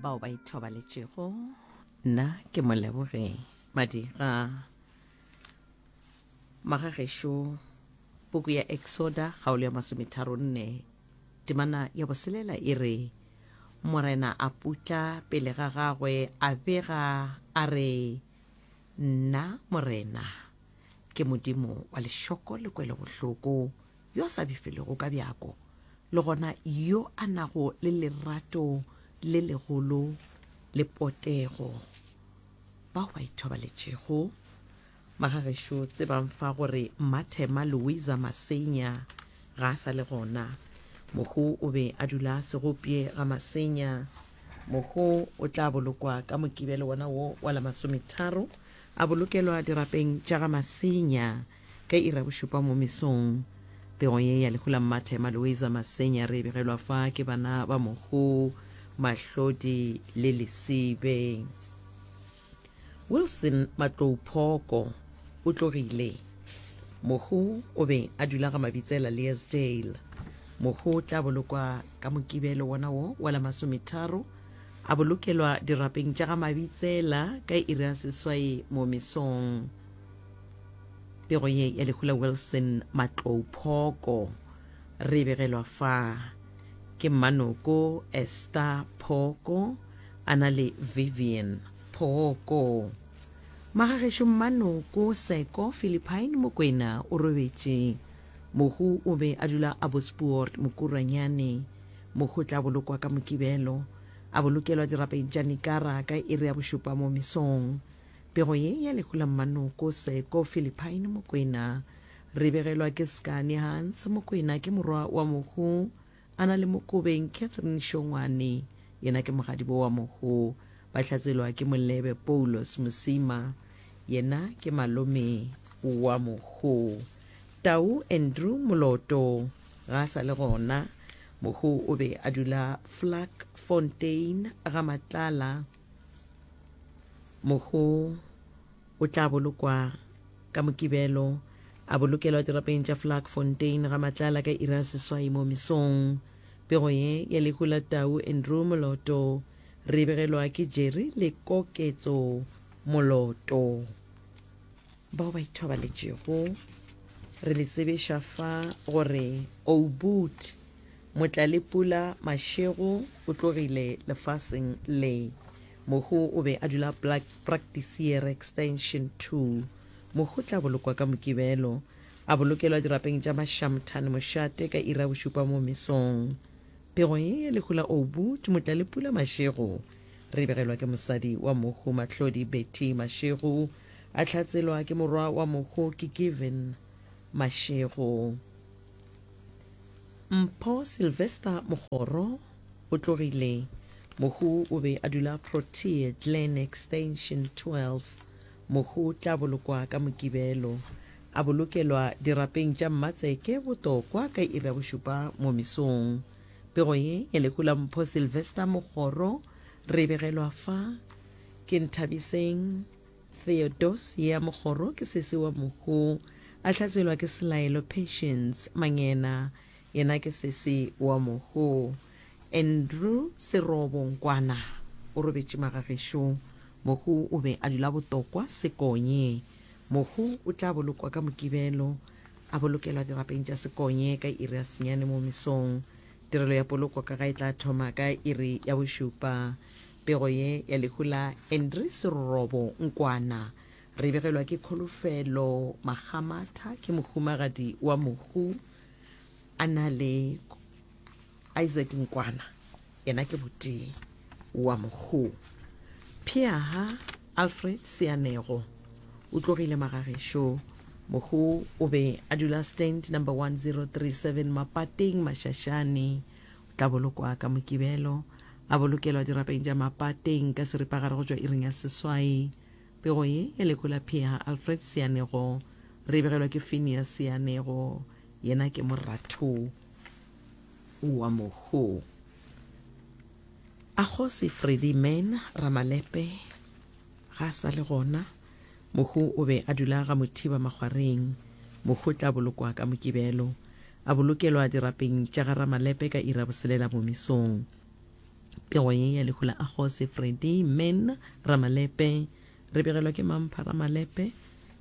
bao ba ithobaletšego nna ke moleboge madira magagešo puku ya exoda kgaolo ya masometharo nne temana ya boselela e re morena a putla pele ga gagwe a bega a re nna morena ke modimo wa lešoko le kwelobohloko yo a sa bifelego ka bjako, le gona yo a nago le lerato le legolo le potego. Bao ba ithobaletšego. Magagešo tsebang fa gore Mmathema Louisa Masenya ga a sa le gona. Mohu o be a dula a se gopye ga Masenya. Mohu o tla bolokwa ka Mokibelo wona wo wa la masometharo, a bolokelwa dirapeng tša ga Masenya. Ka iri ya bošupa mo mesong, pego ye ya lehu la Mmathe Malueza Masenya re e begelwa fa ke bana ba Mokhu, Mahlodi le Lesibe. Wilson Matlouphoko o tlogile. Mokhu o be a dula ga Mabitsela Leasdale. Mokhu o tla bolokwa ka Mokibelo wona wo wa la masometharo, a bolokelwa dirapeng tša ga Mabitsela ka iri ya seswai mo mesong. Pego ye ya lehu la Wilson Matlou Phoko re e begelwa fa ke mmanoko Esther Phoko a na le Vivian Phoko. Magagešo mmanoko Seko Philippine Mokwena o robetše. Mohu o be a dula a Bospoort Mokurwanyane. Mohu o tla bolokwa ka Mokibelo, a bolokelwa dirapeng tša Nikara ka iri ya bošupa mo mesong. Pego ye ya lehu la Mmanoko, Seko, Philippine, Mokwena. Re begelwa ke Scanie Hans, Mokwena ke morwa wa Mohu, a na le Mokobeng, Catherine Shongwane, yena ke mogadibo wa Mohu, ba hlatselwa ke Molebe, Poulos Mosima, yena ke malome wa Mohu. Tau Andrew Moloto ga a sa le gona. Mohu o be a dula Vlakfontein, Gamatlala. Mohu o tla bolokwa ka Mokibelo a bolokelwa dirapeng tša Vlakfontein ga matlala ka iri ya seswai mo mesong. Pego ye ya lehu la tau Andrew Moloto re e begelwa ke Jerry le Koketso Moloto. Bao ba ithobaletšego, re le tsebiša fa gore Oubout Motlalepula Mashego o tlogile lefaseng le. Mohu o be a dula Praktisiere Extension 2. Mohu o tla bolokwa ka Mokibelo, a bolokelwa dirapeng tša Mashamthane Moshate ka iri ya bošupa mo mesong. Pego ye ya lehu la Oubout Motlalepula Mashego re e begelwa ke mosadi wa mohu Mahlodi Betty Mashego, A hlatselwa ke morwa wa mokgo ke Given Mashego. Mpho Sylvester Mogoro o tlogile. Mokgo o be a dula Protea Glen Extension 12. Mokgo o tla bolokwa ka Mokibelo. A bolokelwa dirapeng tša Mmatseke Botokwa ka iri ya bošupa mo mesong. Pego ye ya lehu la Mpho Sylvester Mogoro re e begelwa fa ke Nthabiseng Theodose ya Mokgoro ke sesi wa Mohu, a hlatswelwa ke Selaelo Patience Mangena, yena ke sesi wa Mohu. Andrew Serobo Nkwana o robetše magagešo. Mohu o be a dula Botokwa, Sekonye. Mohu o tla bolokwa ka Mokibelo, a bolokelwa dirapeng tša Sekonye ka iri ya senyane mo mesong. Tirelo ya poloko ka ga e tla thoma ka iri ya bošupa Pego ye ya lehu la Andry Serorobo Nkwana re e begelwa ke Kholofelo Makgamatha, ke mohumagadi wa mohu a na le Isaac Nkwana, yena ke botee wa mohu. Pheaha Alfred Seanego o tlogile magagešo, mohu o be a dula stand number 1037 Mapateng, Mashashane, Tla bolokwa ka Mokibelo. A bolokelwa dirapeng tša Mapateng ka seripagare go tšwa iring ya seswai. Pego ye e lekola Pheha Alfred Seanego. Re e begelwa ke Phineas Seanego. Yena ke moratho wa Mohu. A Kgosi Freddie Mann Ramalepe ga a sa le gona. Mohu o be a dula ga Mothiba makgwareng. Mohu o tla bolokwa ka Mokibelo. A bolokelwa dirapeng tša ga Ramalepe ka iri ya boselela bomisong. Pego ye ya lehu la Akgose, Freddy, Men, Ramalepe. Re begelwa ke mang pha Ramalepe?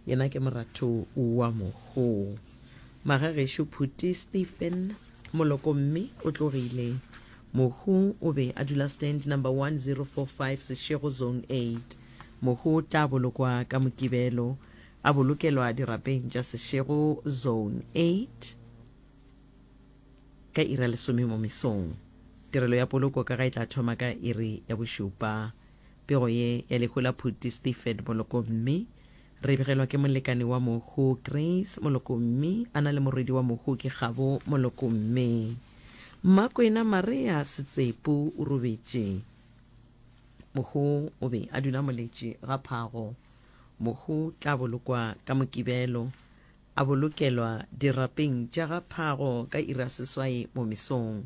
Yena ke moratho wa Mohu. Magagešo, Phuti, Stephen, Moloko mme o tlogile. Mohu o be a dula stand number 1045 Seshego, Zone 8. Mohu o tla bolokwa ka Mokibelo, a bolokelwa dirapeng tša Seshego Zone 8 ka iri ya lesome mo mesong. Tirelo ya poloko ka ga e tla thoma ka iri ya bošupa. Pego ye ya lehu la Phuti Stephen Molokomme re begelwa ke molekane wa mohu Grace Molokomme a na le morwedi wa mohu ke Kgabo Molokomme. Mmakwena Marea Setsepo o robetše. Mohu o be a dula moletše ga phago. Mohu tla bolokwa ka Mokibelo, a bolokelwa dirapeng tša ga phago ka iri ya seswai mo mesong.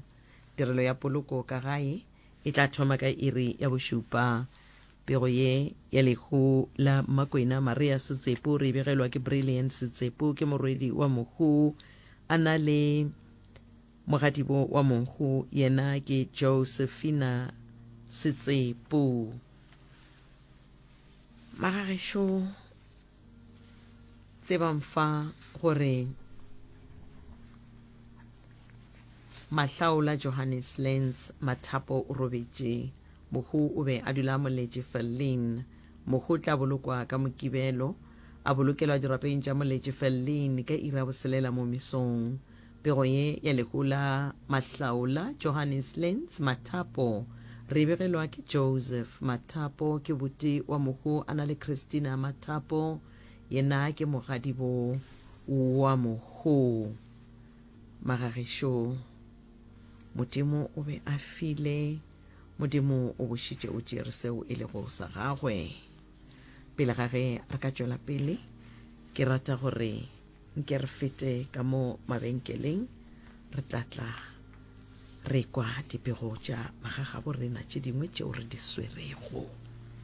Tirelo ya poloko ka gae e tla thoma ka iri ya bošupa. Pego ye ya lehu la Mmakwena Maria Setsepo re e begelwa ke Brilliant Setsepo, ke morwedi wa Mohu, a na le Mogadibo wa monkgo yena ke Josephina Setsepo. Magagešo tsebang fa gore Mahlaola Johannes Lens Mathapo o robetše. Mohu o be a dula a moletše Fellin. Mohu o tla bolokwa ka Mokibelo, a bolokelwa dirapeng tša moletše Fellin ka iri ya boselela mo mesong. Pego ye ya lehu la Mahlaola Johannes Lentz Mathapo re e begelwa ke Joseph Mathapo ke boti wa mohu a na le Christina Mathapo yena ke mogadibo wa mohu Magagešo Modimo o be a file Modimo o bošitše o tšere seo e lego sa gagwe pele ga ge re ka tšwela pele ke rata gore Nke re fete ka mo mabenkeleng, re tla tla re kwa dipego tša bagagabo rena tše dingwe tšeo re di swerego.